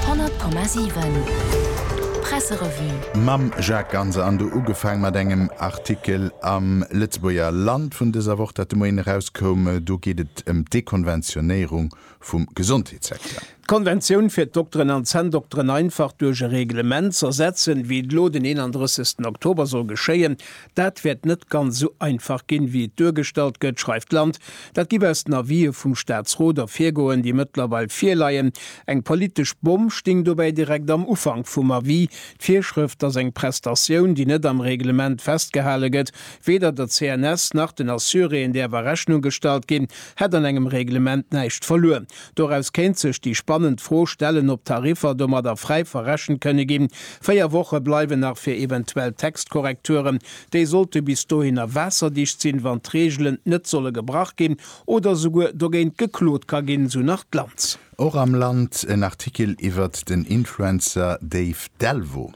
100,7 Presserevue. Mam Jacques Ganser an do ugefaang mat engem Artikel am Lëtzebuerger Land vun dëser Woch, dat de Moien erauskoum. Do geet et ëm d'Dekonventionéierung vum Gesondheetssecteur. D'Konventioun fir d'Dokteren an d'Zänndokteren einfach duerch e Reglement z'ersetzen, wéi et elo den 31. Oktober soll geschéien, Dat wäert net ganz esou einfach ginn, wéi et duergestallt gëtt, schreift d'Land. Dat géif aus den Avisë vum Staatsrot ervirgoen, déi mëttlerweil virleien. Eng politesch Bomm stéing dobäi direkt am Ufank vum Avis, D'Virschrëft, dass eng Prestatioun, déi net am Reglement festgehale gëtt, weder der CNS nach den Assuréeën däerf a Rechnung gestallt ginn, hätt an engem Reglement näischt verluer. Doraus kéint sech déi spannend Fro stellen, ob d'Tariffer domadder fräi verrechent kënne ginn. Véier Woche bleiwen nach fir eventuell Textkorrekturen. Déi sollte bis dohinner waasserdicht sinn, wann d'Reegelen net solle gebrach ginn oder souguer dogéint geklot ka ginn, esou nach d'Lanz. Och am Land en Artikel iwwert den Influencer Dave Delvaux.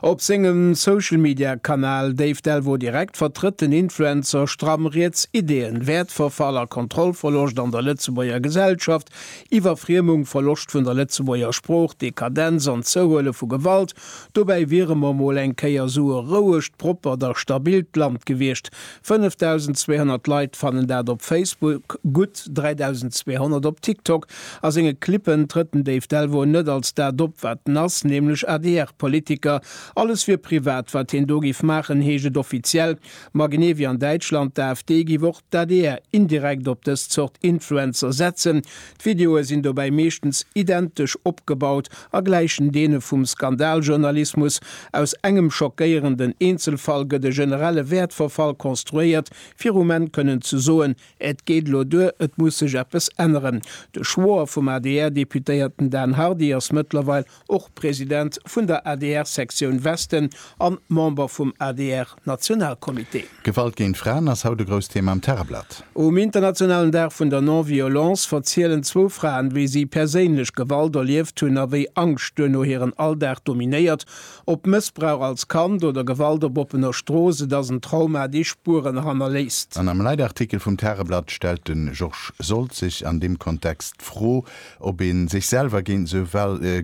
Op sengem Social Media Kanal Dave Delvaux Direct vertrëtt den Influencer stramm riets Ideeën, Wäertverfall a Kontrollverloscht an der Lëtzebuerger Gesellschaft, Iwwerfriemung, Verloscht vun der Lëtzebuerger Sprooch, Dekadenz an Zouhuele vu Gewalt. Dobäi wiere mer mol eng Kéier sou e rouegt, proppert a stabilt Land gewiescht, 5.200 Leit fannen dat op Facebook, gutt 3.200 op TikTok. A senge Clippen trëtt den Dave Delvaux net als dat op, wat en ass, nämlech ADR-Politiker. Alles wier privat, wat hien do giff maachen, heescht et offiziell. Ma genee wéi an Däitschland d'AfD, giff och d'ADR indirekt op dës Zort Influencer setzen. D'Videoe sinn dobäi meeschtens identesch opgebaut a gläichen deene vum Skandaljournalismus, aus engem schockéierenden Eenzelfall gëtt e generelle Wäertverfall konstruéiert, fir um Enn kënnen ze soen, Et geet elo duer, et muss sech eppes änneren. De Schwoer vum ADR-Deputéierten Dan Hardy ass mëttlerweil och President vun der adr Sektioun Westen an Member vum adr Nationalcomité. Gewalt géint Fraen ass haut e grousst Thema am Tageblatt. Um internationalen Dag vun der Non-Violence verzielen zwou Fraen, wéi si perséinlech Gewalt erlieft hunn a wéi Angscht duerno hiren Alldag dominéiert. Ob Mëssbrauch als Kand oder Gewalt op oppener Strooss, et ass en Trauma, dee Spueren hannerléisst. An am Leitartikel vum Tageblatt stellt de Georges Soltz sech an deem Kontext d'Fro, Ob een sech selwer géint esou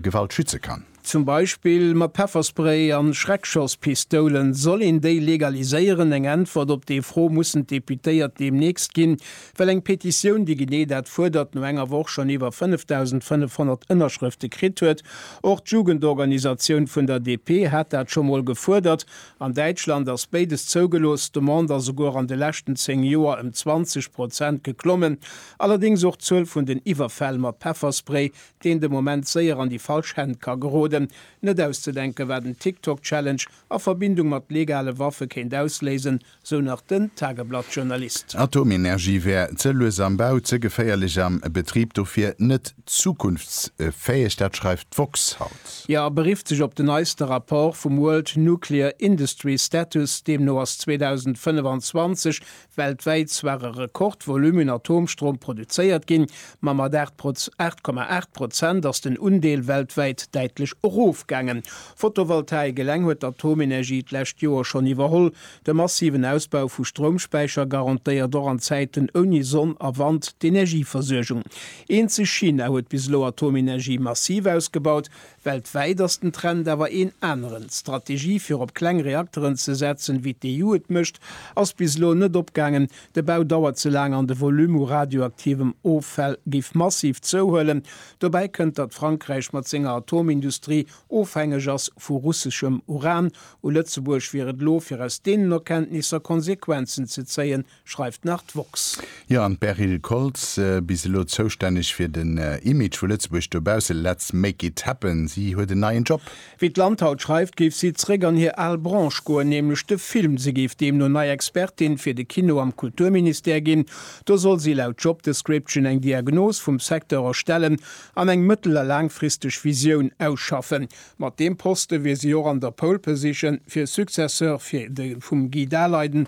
Gewalt schütze kann? Zum Beispill mat Pefferspray an Schreckschosspistoulen. Soll een déi legaliséieren? Eng Äntwert op déi Fro mussen d'Deputéiert deemnächst ginn, well eng Petitioun, déi genee dat fuerdert, no enger Woch schonn iwwer 5.500 Ënnerschrëfte kritt huet. Och d'Jugendorganisatioun vun der DP hat dat scho mol gefuerdert. An Däitschland ass béides zougelooss. D'Demande ass souguer an de leschten 10 Joer ëm 20 Prozent geklommen. Allerdéngs och d'Zuel vun den Iwwerfäll mat Pefferspray, deen de Moment séier an déi falsch Hänn ka geroden. Net auszedenken, wat en TikTok-Challenge a Verbindung mat legale Waffe kéint ausléisen, sou nach den Tageblatt-Journalist. Atomenergie wär ze lues am Bau, ze geféierlech am Betrib, dofir net zukunftsfäeg. Dat schreift d'woxx haut. Jo, a berifft sech op den neiste Rapport vum World Nuclear Industry Status. Deemno ass 2025 Weltwäit zwar e Rekordvolumen Atomstrom produzéiert ginn, ma mat 8 Proz 8,8 Prozent ass den Undeel weltwäit däitlech erofgaangen. Fotovoltaik eleng huet d'Atomenergie d'lescht Joer schonn iwwerholl. De massiven Ausbau vu Stroumspäicher garantéiert och an Zäiten ouni Sonn a Wand d'Energieversuergung. Eenzeg China huet bis elo Atomenergie massiv ausgebaut, Weltwäit ass den Trend awer een aneren. D'Strategie fir op kleng Reakteren ze setzen, wéi d'EU et mécht, ass bis elo net opgaangen. De Bau dauert ze laang an de Volume u radioaktivem Offäll géif massiv zouhuelen. Dobäi kënnt, datt Frankräich mat senger Atomindustrie ofhängeg ass vu russeschem Uran. U Lëtzebuerg wier et elo, fir aus deenen Erkenntnisser Konsequenzen ze zéien, schreift nach d'woxx. Jo, an d'Beryl Koltz, bis elo zoustänneg fir den Image vu Lëtzebuerg dobausse, let's make it happen, si huet en neien Job. Wéi d'Land haut schreift, géif si zeréck an hir al Branche goen, nämlech de Film. Si géif deemno nei Expertin fir de Kino am Kulturministère ginn. Do soll si laut Job Description eng Diagnos vum Secteur erstellen an eng mëttel a laangfristeg Visioun ausschaffen. Mat deem Poste wier si och an der Pole Position fir e Successeur fir de vum Guy Daleiden.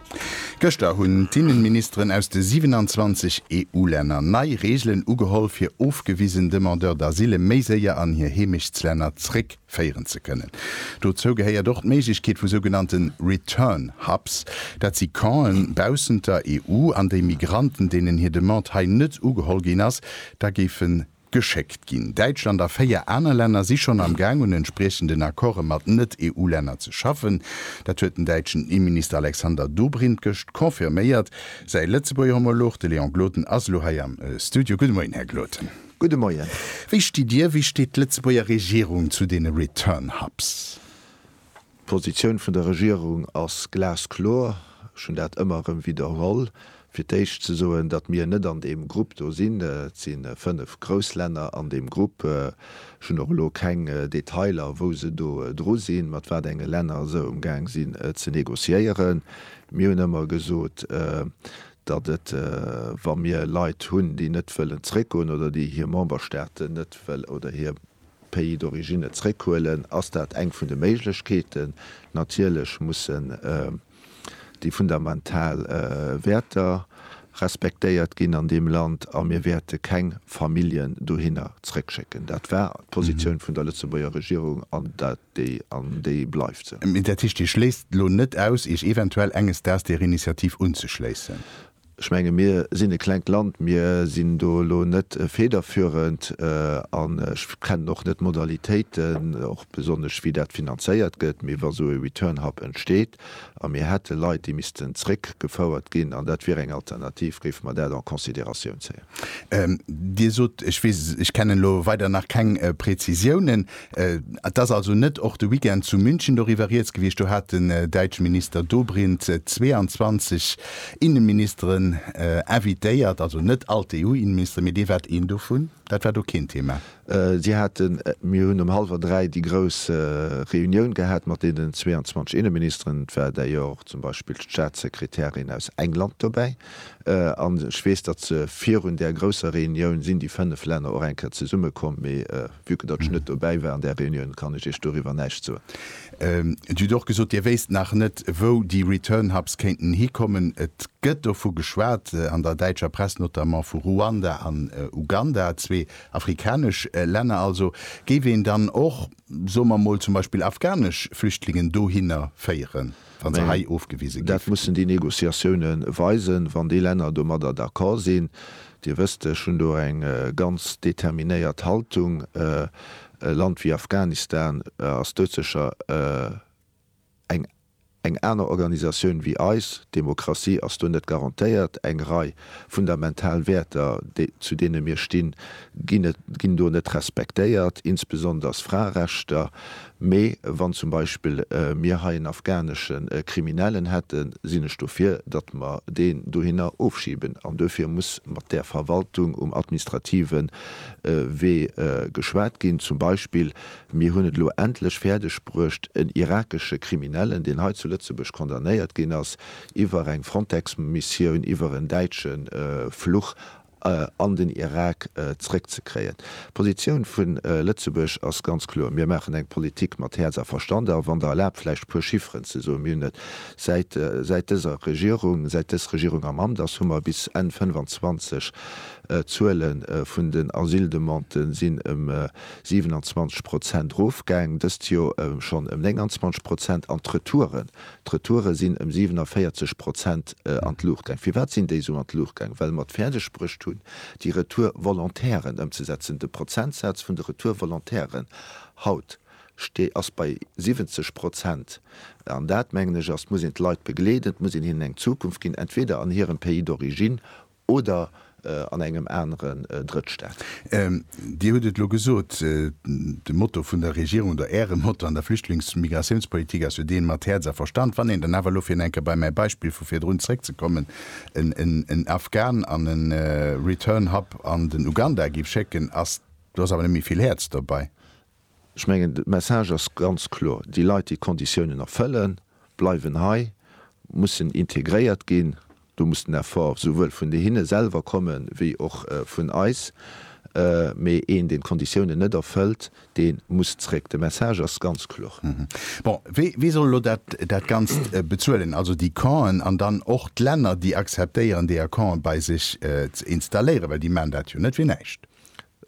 Gëschter hunn d'Inneministeren aus de 27 EU-Länner nei Reegelen ugeholl, fir ofgewisen Demandeurs d'asile méi séier an hir Heemechtslänner zréckféieren ze kënnen. Dozou gehéiert och d'Méiglechkeet vu sougenannte Return Hubs. Dat si Campen baussent der EU, an déi Migranten, deenen hir Demande hei net ugeholl ginn ass, da géifen geschéckt ginn. Däitschland a véier aner Länner si schonn am Gaang un entspriechenden Accorde mat Net-EU-Länner ze schaffen. Dat huet den däitschen Inneminister Alexander Dobrindt gëscht confirméiert. Säi Lëtzebuerger Homolog, de Léon Gloden, ass elo hei am Studio. Gudde Moien, Här Gloden. Gudde Moien. Wéi stitt Dir, wéi steet d'Lëtzebuerger Regierung zu deene Return Hubs? D'Positioun vun der Regierung ass glaskloer. Ech hunn dat ëmmer erëm widderholl. Fir d'éischt ze soen, datt mir net an deem Grupp do sinn. Et si fënnef grouss Länner an deem Grupp. Ech hunn och elo keng Detailer, wou se do dru sinn, mat wat enge Länner se umgaang sinn ze négociéieren. Mir hunn ëmmer gesot, datt et, wa mir Leit hunn, déi net wëllen zréckgoen oder déi hir Memberstaaten net wël oder hir Pays d'origine zréckhuelen, ass dat eng vun de Méiglechkeeten. Natierlech mussen déi fundamental Wäerter respektéiert ginn an deem Land a mir wäerte keng Familljen dohinner zréckschécken. Dat war d'Positioun vun der Lëtzebuerger Regierung an dat déi an déi bleift se. Mee dat heescht, Dir schléisst elo net aus, Iech eventuell enges Daags där Initiativ unzeschléissen? Ech menge mir sinn e klengt Land, mir sinn do elo net federführend an ech kennen och net d'Modalitéiten, och besonnesch wéi dat finanzéiert gëtt. Mee wa sou e Return Hub entsteet, a mir hätte Leit, déi missten zréckgefouert ginn, an dat wier eng Alternativ, géife mer dat en considératioun zéien. Dir sot, ech weess, ech kennen elo weider nach keng Prezisiounen. Et ass also net och de Weekend zu München doriwwer Rieds gewiescht? Do hat den däitsche Minister Dobrindt 22 Innenministeren invitéiert, also net all d'EU-Innenministeren, mee Dir waart een dovun. Dat war do keen Thema? Si haten, mir hunn um hallwer dräi déi grouss Reunioun gehat mat deenen 22 Inneministeren, et war d'ailleurs och zum Beispill d'Staatssekretärin aus England dobäi, an ech weess, datt se virun där grousser Reunioun sinn déi fënnef Länner och eng Kéier zesummekomm, mee vue que datt ech net dobäi war an där Reunioun, kann ech Iech doriwwer näischt soen. Dir hutt och gesot, Dir wéisst nach net, wou déi Return hubs kéinten hikommen. Et gëtt dovu geschwat, an der däitscher Press notamment, vu Ruanda an Uganda, zwee Afrikanesch Länner also. Géif een dann och, soe mer mol, zum Beispill afghanesch Flüchtlingen dohinner féieren, wa se hei ofgewise ginn? Dat mussen déi Négociatioune weisen, wann déi Länner domadder d'accord sinn. Dir wësst, ech hunn do eng ganz determinéiert Haltung. E Land wéi Afghanistan ass doudsécher eng. Eng aner Organisatioun wéi eis, d'Demokratie ass do net garantéiert. Eng Rei fundamental Wäerter, zu deene mir stinn, ginn do net respektéiert, insbesonders Fraerechter. Mee wann zum Beispill mir hei en afghanesche Kriminellen hätten, sinn ech dofir, datt mer deen dohinner ofschiben. An duerfir muss mat där Verwaltung um administrative Wee geschwat ginn, zum Beispill Mir hunn et elo endlech fäerdeg bruecht, en irakesche Kriminellen, deen hei zu Lëtzebuerg condamnéiert ginn ass, iwwer eng Frontex-Missioun, iwwer en däitsche Fluch an den Irak zréckzekréien. D'Positioun vu Lëtzebuerg ass ganz kloer, Mir maachen eng Politik mat Häerz a Verstand. A wann Der erlaabt, vläicht e puer Chifferen ze soen. Mir hunn et, säit, säit dëser Regierung, säit dës Regierung am Amt ass, hu mer bis Enn 25 d'Zuele vun den Asyldemandë sinn ëm 27 Prozent Rofgäng dëst Joer ëm schonn ëm 29 Prozent an d'Retouren, d'Retoure sinn ëm 47 Prozent an d'Luucht gaang. Firwat sinn déi esou an d'Luucht gaang? Well mer et fäerdeg bruecht hunn, déi Retour-Volontairen ëmzesetzen. De Prozentsaz vun de Retour-Volontairen haut sti ass bei 70 Prozent. An dat, mengen ech, ass, et muss een d'Leit begleeden, et muss een hinnen eng Zukunft ginn, entweder an hirem Pays d'origine Oder an engem aneren Drëttstaat. Dir hutt et elo gesot, de Motto vun der Regierung oder Äre Motto an der Flüchtlings a Migratiounspolitik ass jo deen mat Häerz a Verstand. Wann een dann awer elo, fir eng Kéier bei mäi Beispill vu virdrun zréckzekommen, en Afghan an e Return Hub an den Uganda géif schécken, do ass awer net méi vill Häerz dobäi. Ech mengen, de Message ass ganz kloer, déi Leit, déi d'Konditiounen erfëllen, bleiwen hei, mussen integréiert ginn. Do muss den Effort esouwuel vun hinne selwer kommen, wéi och vun eis. Mee een, deen d'Konditiounen net erfëllt, dee muss zréck. De Message ass ganz kloer. Bon, wie soll elo dat Ganzt bezuelen? Also déi Campen an dann och d'Länner, déi akzeptéieren, déi a Campe bei sech ze installéieren, well déi maachen dat jo net fir näischt.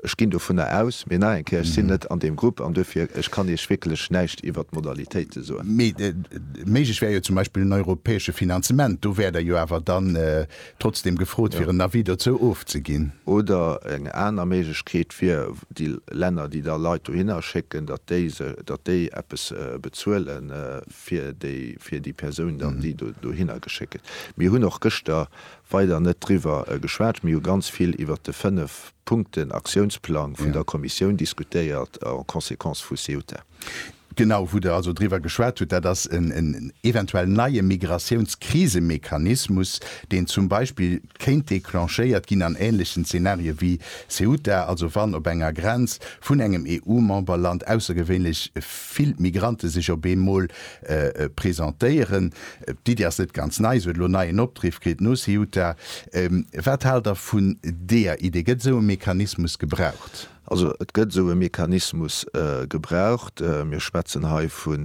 Ech ginn dovunner aus, mee nach eng Kéier, ech sinn net an deem Grupp an duerfir, ech kann Iech wierklech näischt iwwert d'Modalitéite soen. Mee méiglech wär jo zum Beispill en europäesche Finanzement. Do wäert Der jo awer dann trotzdeem gefrot, fir en Avis dozou ofzeginn. Oder eng aner Méiglechkeet wier, déi Länner, déi da Leit dohinner schécken, datt déi se, datt déi eppes bezuele fir déi, fir déi Persoun dann, déi dohinner geschéckt gëtt. Mir hunn och gëschter weider net driwwer geschwat. Mir hu ganz vill iwwert de fënnef Punkten Aktiounsplang vun der Kommissioun diskutéiert en conséquence vu Ceuta. Genau, wou Der also driwwer geschwat hutt, dat ass en eventuell neie Migrationskrisemechanismus, deen zum Beispill kéint declenchéiert ginn an ähnlechen Zeenarie wéi Ceuta, also wann op enger Grenz vun engem EU-Memberland aussergewéinlech vill Migrante sech op eemol Presentéieren. D'Iddi ass net ganz nei, se huet elo neien Opdriff kritt no Ceuta. Wat haalt Der vun deeër Iddi? Gëtt esou e Mechanismus gebraucht? Also et gëtt esou e Mechanismus gebraucht. Mir schwätzen hei vu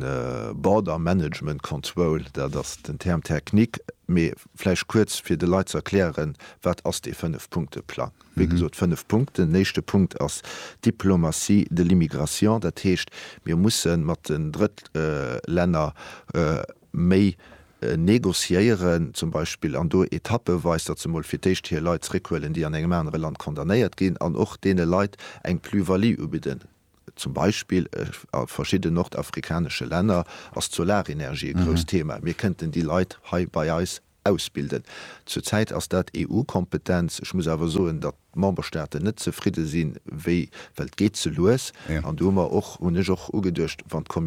Border Management Control, dat ass den Terme technique. Mee vläicht kuerz, fir de Leit ze erklären, Wat ass dee Fënnef-Punkte-Plang? Wéi gesot, fënnf Punkten. Den éischte Punkt ass d'Diplomatie de l'immigration. Dat heescht, mir musse mat den Drëttlänner méi negociéieren, zum Beispill, an do etappeweis, datt se emol fir d'éischt hir Leit zréckhuelen, déi an engem anere Land condamnéiert ginn, an och deene Leit eng Plus-value ubidden. Zum Beispill a verschidden nordafrikanesche Länner ass d'Solarenergie e grousst Thema. Mir kënnten déi Leit hei bei eis Ausbilden. Zur Zäit ass dat EU-Kompetenz. Ech muss awer soen, datt d'Memberstaaten net zefridde sinn, wéi, well et geet ze lues. An do hu mer och, hunn ech och ugeduecht, wann.